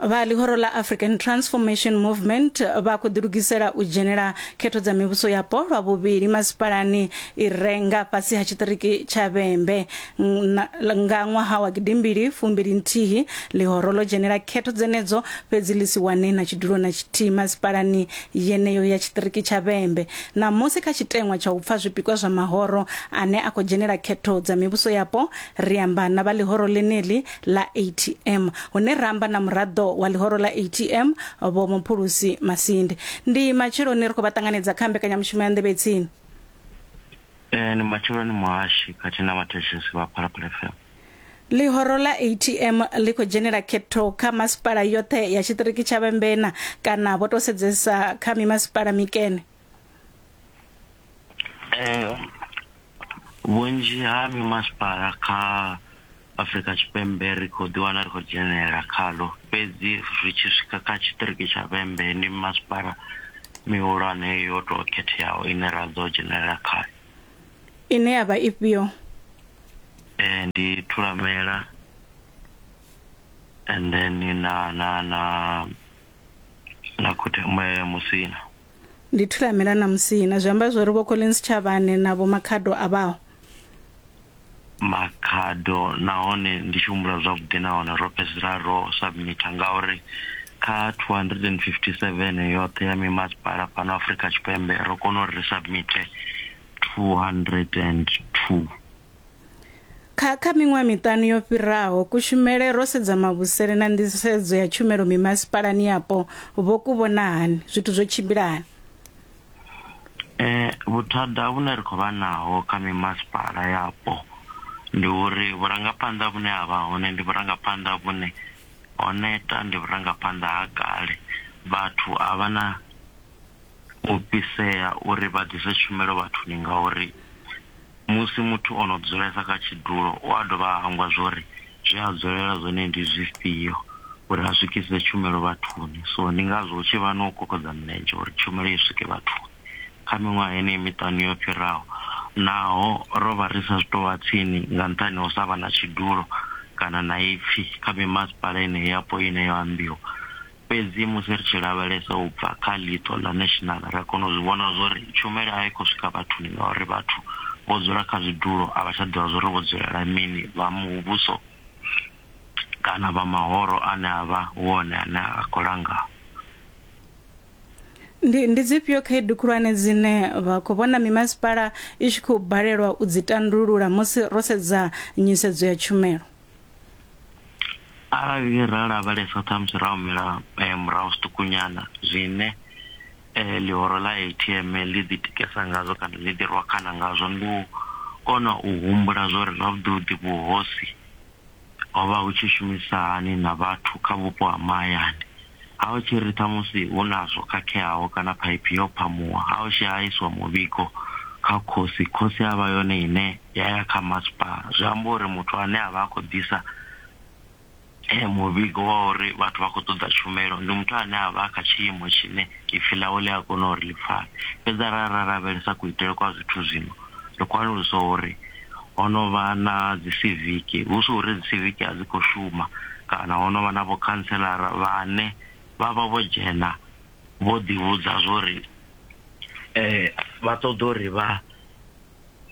vha ḽihoro ḽa african transformation movement vha khou ḓilugisela u dzhenela khetho dza mivhuso yapo lwa vhuvhili masipalani i re nga fhasi ha tshiṱiriki tsha vhembe nga ṅwaha wa gidimbili fumbili nthihi ḽihoro ḽo dzhenela khetho dzenedzo fhedzi ḽi si wane na tshidulo na tshithihi masipalani yeneyo ya tshiṱiriki tsha vhembe ṋamusi kha tshiteṅwa tsha u pfa zwipikwa zwa mahoro ane a khou dzhenela khetho dza mivhuso yapo ri amba na vha ḽihoro ḽeneḽi ḽa ATM hune ra amba na muraḓo wa ḽihoro ḽa ATM vho Muphulusi Masindi ndi matsheloni ri khou vha ṱanganedza kha mbekanyamushumo ya nḓevhe tsini Eh ni matsheloni muhashi khathihi na vhathetshelesi vha Phalaphala FM. Ḽihoro ḽa ATM ḽi khou dzhenela khetho kha masipala yoṱhe ya tshiṱiriki tsha Vhembena kana vho to sedzesa kha mimasipala mikene. Eh, vhunzhi ha mimasipala kha Afrika Tshipembe ri khou ḓiwana ri khou dzhenelela khalo fhedzi ri tshi swika kha tshiṱiriki tsha Vhembe ndi mimasipala mihulwane yo tou khetheaho ine ra ḓo dzhenelela khayo ine ya vha ifhio eh, ndi Thulamela and then na na na na Khuthe- Musina Ndi thulamela na musina. Zwi amba zwori vho Collins Tshavhane na vho Makhado a vhaho. Makhado, Nahone ndi tshi humbula zwavhuḓi na hone ro fhedzisela ro submitter ngauri kha 257 yoṱhe ya mimasipala fhano Afrika Tshipembe ro kona uri ri submitter 202. Kha kha miṅwaha miṱanu yo fhiraho, kushumele ro sedza mavhusele na nḓisedzo ya tshumelo mimasipalani yapo vho ku vhona hani? Zwithu zwo tshimbila hani? Eh, vhuthada vhune ri khou vha naho kha mimasipala yapo ndi uri vhurangaphanḓa vhune ha vha hone ndi vhurangaphanḓa vhune ho neta, ndi vhurangaphanḓa ha kale. Vhathu a vha na u fhisea uri vha ḓise tshumelo vhathuni ngauri. Musi muthu o no dzulesa kha tshidulo, u a dovha a hangwa zwo ri zwe a dzulela zwone ndi zwifhio uri a swikise tshumelo vhathuni. So ndi ngazwo hu tshi vha na u kokodza milenzhe uri tshumelo i swike vhathuni. Kha miṅwaha yeneyi miṱanu yo fhiraho, naho ro vha ri sa tou vha tsini nga nṱhani ha u sa vha na tshidulo kana na ipfi kha mimasipala yeneyi yapo ine yo ambiwa, Fhedzi musi ri tshi lavhelesa u bva kha ḽiṱo ḽa national, ri a kona u zwi vhona zwa uri tshumelo a i khou swika vhathuni ngauri vhathu vho dzula kha zwidulo a vha tsha ḓivha zwa uri vho dzulela mini, vha muvhuso kana vha mahoro ane a vha hu one ane a khou langa. Ndi, ndi dzifhio khaedu khulwane dzine vha khou vhona mimasipala i tshi khou balelwa u dzi tandulula musi ro sedza nyisedzo ya tshumelo? arali ra lavhelesa ṱhamusi ra humela eh, murahu zwiṱukunyana zwine eh, ḽihoro ḽa atm ḽi ḓi tikesa ngazwo kana ḽi ḓi rwakhana ngazwo ndi u kona u humbula zwo ri zwavhuḓivhuḓi vhuhosi ho vha hu tshi shumisa hani na vhathu kha vhupo ha mahayani Ha hu tshiri ṱhamusi hu na zwo khakheaho kana phaiphi yo phamuwa, ha hu tshi ha iswa muvhigo kha khosi, khosi ya vha yone ine ya ya kha masipala. Zwi amba uri muthu ane a vha a khou ḓisa muvhigo wa uri vhathu vha khou ṱoḓa tshumelo ndi muthu ane a vha kha tshiimo tshine ipfhi ḽawe ḽi a kona uri ḽi pfale. Fhedzi arali ra lavhelesa kuitele kwa zwithu zwino, ri khou alusa uri. ho no vha na dzi siviki, hu si uri dzi siviki a dzi khou shuma kana ho no vha na vhokhanselara vhane vha vha vho dzhena vho ḓivhudza zwori vha ṱoḓa uri vha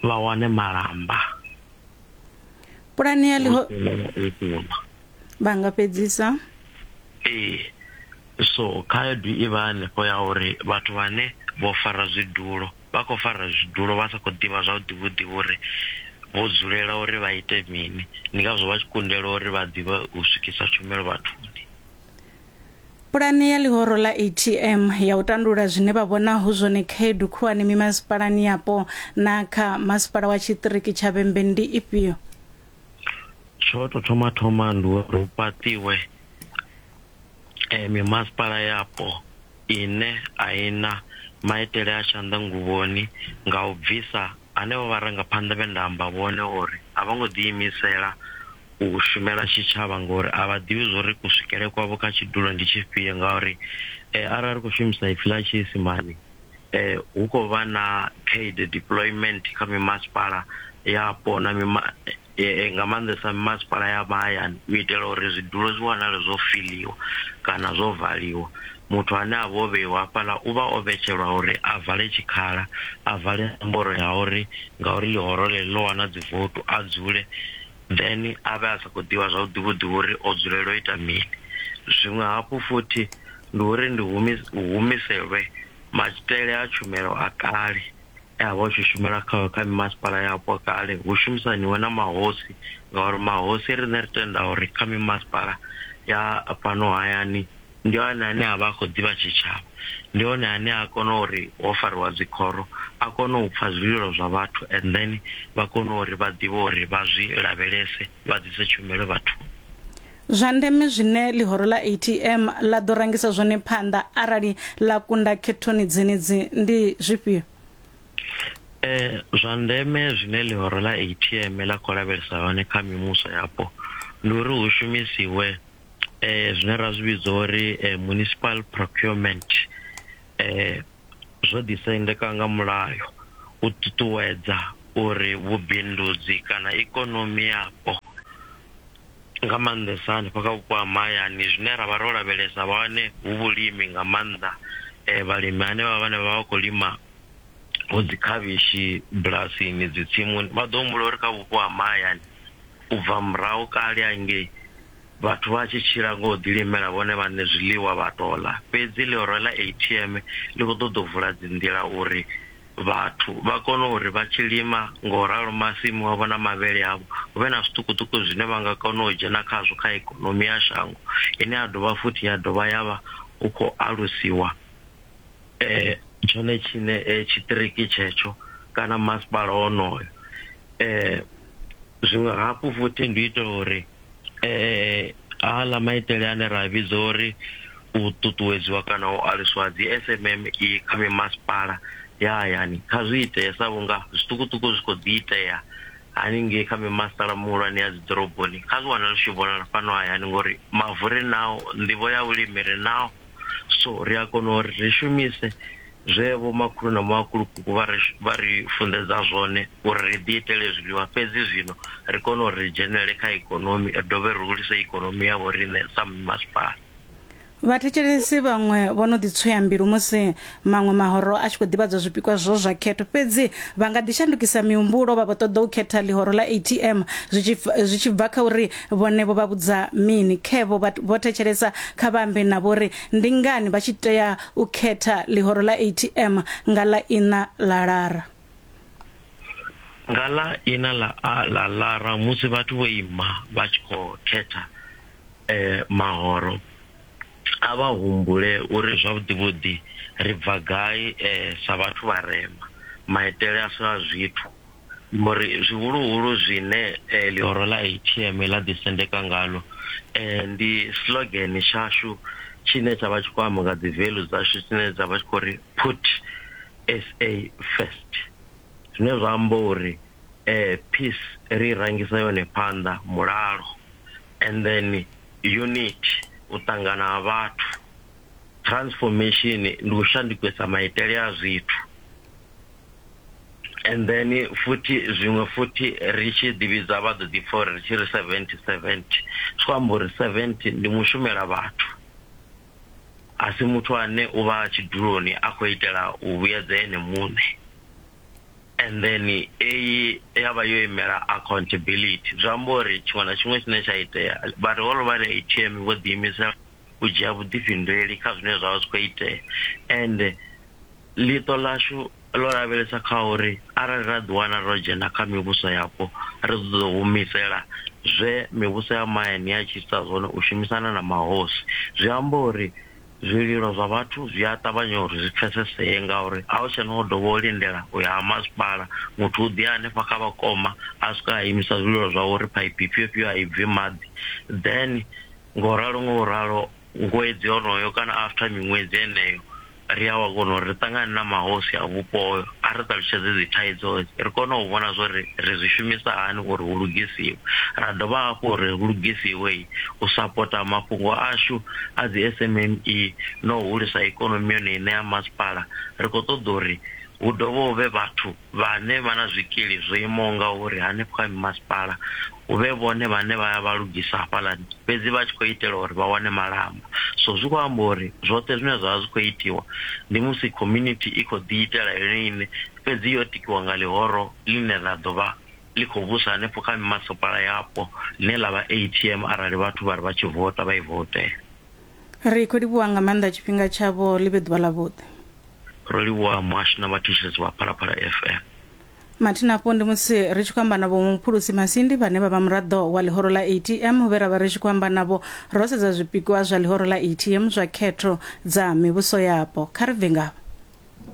vha wane malamba pulane ya ḽiho vha nga fhedzisa ee so khaedu i vha hanefho ya uri vhathu vhane vho fara zwidulo vha khou fara zwidulo vha sa khou ḓivha zwavhuḓi vhuḓi vhuri vho dzulela uri vha ite mini ndi ngazwo vha tshi kundelwa uri vha ḓivhe u swikisa tshumelo vhathuni Pulane ya ḽihoro ḽa ATM ya u tandulula zwine vha vhona hu zwone khaedu khulwane mimasipalani yapo na kha masipala wa tshiṱiriki tsha Vhembe ndi ifhio? Tsho to thoma thoma ndi uri hu fhaṱiwe eh, mimasipala yapo ine a i na maitele a tshanḓanguvhoni nga u bvisa henevho vharangaphanḓa vhe nda amba vhone uri a vho ngo ḓiimisela u shumela tshitshavha ngori a vha ḓivhi zwo ri kuswikele kwavho kha tshidulo ndi tshifhio ngauri eh, arali ri khou shumisa ipfi ḽa tshiisimani eh, hu khou vha na khaedu deployment kha mimasipala yapo na mima, Ee, nga maanḓesa mimasipala ya mahayani u itela uri zwi dule zwi wanale zwo fiḽiwa kana zwo valiwa. Muthu ane a vha o vheiwa hafhaḽa u vha o vhetshelwa uri a vale tshikhala, a vale nomboro ya uri ngauri ḽihoro ḽeḽi ḽo wana dzi vouthu a dzule, then a vhe a sa khou ḓivha zwavhuḓi vhuḓi uri o dzulela u ita mini. Zwiṅwe hafhu futhi ndi uri ndi humiselwe maitele a tshumelo a kale Ya vha u tshi shumela kha kha mimasipala yapo kale hu shumisaniwe na mahosi ngauri mahosi riṋe ri tenda uri kha mimasipala ya fhano hayani ndi hone ane a vha a khou ḓivha tshitshavha ndi hone ane a kona uri ho fariwa dzikhoro a kone u pfha zwililo zwa vhathu and then vha kone uri vha ḓivhe uri vha zwi lavhelese vha ḓise tshumelo vhathuni. zwa ndeme zwine ḽihoro ḽa atm ḽa ḓo rangisa zwone phanḓa arali ḽa kunda khethoni dzenedzi ndi zwifhio Eh, zwa ndeme zwine ḽihoro ḽa atm ḽa khou lavhelesa hone kha mimuso yapo ndi uri hu shumisiwe eh, zwine ra zwi vhidza uri eh, municipal procurement eh, zwo ḓisendeka nga mulayo u ṱuṱuwedza uri vhubindudzi kana ikonomi yapo nga maanḓesa hanefha kha vhupo ha mahayani zwine ra vha ro lavhelesa hone hu vhulimi nga maanḓa um vhalimi hanevha vhane vha vha khou lima vho dzi khavhishi bulasini dzi tsimuni vha ḓo humbula uri kha vhupo ha mahayani u bva murahu kale hangei vhathu vha tshi tshila ngo ḓi limela vhone vhaṋe zwiḽiwa vha tola fhedzi ḽihoro ḽa atm ḽi khou ṱoḓa u vula dzi nḓila uri vhathu vha kone uri vha tshi lima nga u ralo masimu avho na mavhele avho hu vhe na zwiṱukuṱuku zwine vha nga kona u dzhena khazwo kha ikonomi ya shango ine ya dovha futhi ya dovha ya vha hu khou alusiwa tshone tshiṋe tshiṱiriki tshetsho kana masipala wonoyo . Zwiṅwe hafhu futhi ndi u itela uri aḽa maitele ane ra a vhidza uri u ṱuṱuwedziwa kana u aluswa ha dzi SMME kha mimasipala ya hayani kha zwi itee sa vhunga zwiṱukuṱuku zwi khou ḓi itea haningei kha mimasipala mihulwane ya dzi ḓoroboni kha zwi wane ḽi tshi vhonala fhano hayani ngori mavu ri nao, nḓivho ya vhulimi ri nao so ri a kona uri ri shumise Zwe vhomakhulu na makhulukuku vha ri, vha ri funḓedza zwone uri ri ḓiitele zwiḽiwa fhedzi zwino ri kone uri ri dzhenelele kha ikonomi ri dovhe ri hulise ikonomi ya vhoriṋe sa mimasipala. Vhathetshelesi vhaṅwe vho no ḓi tswea mbilu musi maṅwe mahoro a tshi khou ḓivhadzwa zwipikwa zwo zwa khetho. Fhedzi vha nga ḓi shandukisa mihumbulo vha vho ṱoḓa u khetha ḽihoro ḽa ATM zwi tshi, zwi tshi bva kha uri vhone vho vha vhudza mini. Khe vho vha vho thetshelesa kha vha ambe navho uri ndi ngani vha tshi tea u khetha ḽihoro ḽa atm nga ḽa iṋa ḽa lara. Nga ḽa iṋa ḽa a ḽa lara musi vhathu vho ima vha tshi khou khetha e, mahoro, a vha humbule uri zwavhuḓivhuḓi ri bva gai e, sa vhathu vharema, maitele ashu a zwithu. mbo ri, Zwihuluhulu zwine ḽihoro ḽa ATM ḽa ḓisendeka ngaḽo ndi slogan tshashu tshine tsha vha tshi khou amba nga dziveḽu dzashu dzine dza vha tshi khou ri Put SA First, zwine zwa amba uri peace ri i rangisa yone phanḓa, mulalo and then unity, u ṱangana ha vhathu, transformation ndi u shandukisa maitele a zwithu. and then futhi zwiṅwe futhi ri tshi ḓivhidza vha ḓo ḓi pfha uri ri tshi ri seventy seventy zwi amba uri seventy ndi mushumela vhathu a si muthu ane u vha tshiduloni a khou itela u vhuyedza ene muṋe and then eyi ya vha yo imela accountability zwi amba uri tshiṅwe na tshiṅwe tshine tsha itea vhari hollovha ri atm vho ḓiimisela u dzhia vhuḓifhinduleli kha zwine zwavha zwi kho itea ende ḽiṱo ḽashu ḽo lavhelesa kha uri arali ra ḓi wana ro dzhena kha mivhuso yapo ri ḓo ḓo humisela zwe mivhuso ya mahayani ya tshi ita zwone u shumisana na mahosi zwi amba uri zwililo zwa vhathu zwi a ṱavhanya uri zwi pfesesee ngauri a hu tshena u dovha u lindela u ya ha masipala muthu u ḓi hanefha kha vhakoma a swika a imisa zwililo zwa uri phaiphi ifhio ifhio a i bvi maḓi then Nga u ralo, nga u ralo, ṅwedzi honoyo kana after miṅwedzi heneyo, ri a wa kona uri ri ṱangane na mahosi a vhupo hoyo a ri ṱalutshedze dzi thaidzo hedzi, ri kone u vhona zwa uri ri zwi shumisa hani uri hu lugisiwe. Ra dovha hafhu uri hu lugisiwe u sapota mafhungo ashu a dzi SMME na u hulisa ikonomi yone iṋe ya masipala, ri khou ṱoḓa uri hu dovhe hu vhe vhathu vhane vha na zwikili zwo imaho ngauri hanefho kha mimasipala hu vhe vhone vhane vha ya vha lugisa hafhaḽani, fhedzi vha tshi khou itela uri vha wane malamba. So zwi khou amba uri zwoṱhe zwine zwa vha zwi khou itiwa ndi musi community i khou ḓi itela yone iṋe fhedzi yo tikiwa nga ḽihoro ḽine ḽa ḓo vha ḽi khou vhusa hanefho kha mimasipala yapo ḽine ḽa vha A_T_M arali vhathu vha ri vha tshi vota vha i votela. Ri khou livhuwa nga maanḓa tshifhinga tshavho, ḽi vhe ḓuvha ḽavhuḓi. Ro livhuwa muhasho na vhathetshelesi vha Phalaphala FM. Mathina afho ndi musi ri tshi khou amba na Vho Muphulusi Masindi vhane vha vha muraḓo wa ḽihoro ḽa ATM vhe ra vha ri tshi khou amba navho ro sedza zwipikwa zwa ḽihoro ḽa ATM zwa khetho dza mivhuso yapo. Kha ri bve ngavha.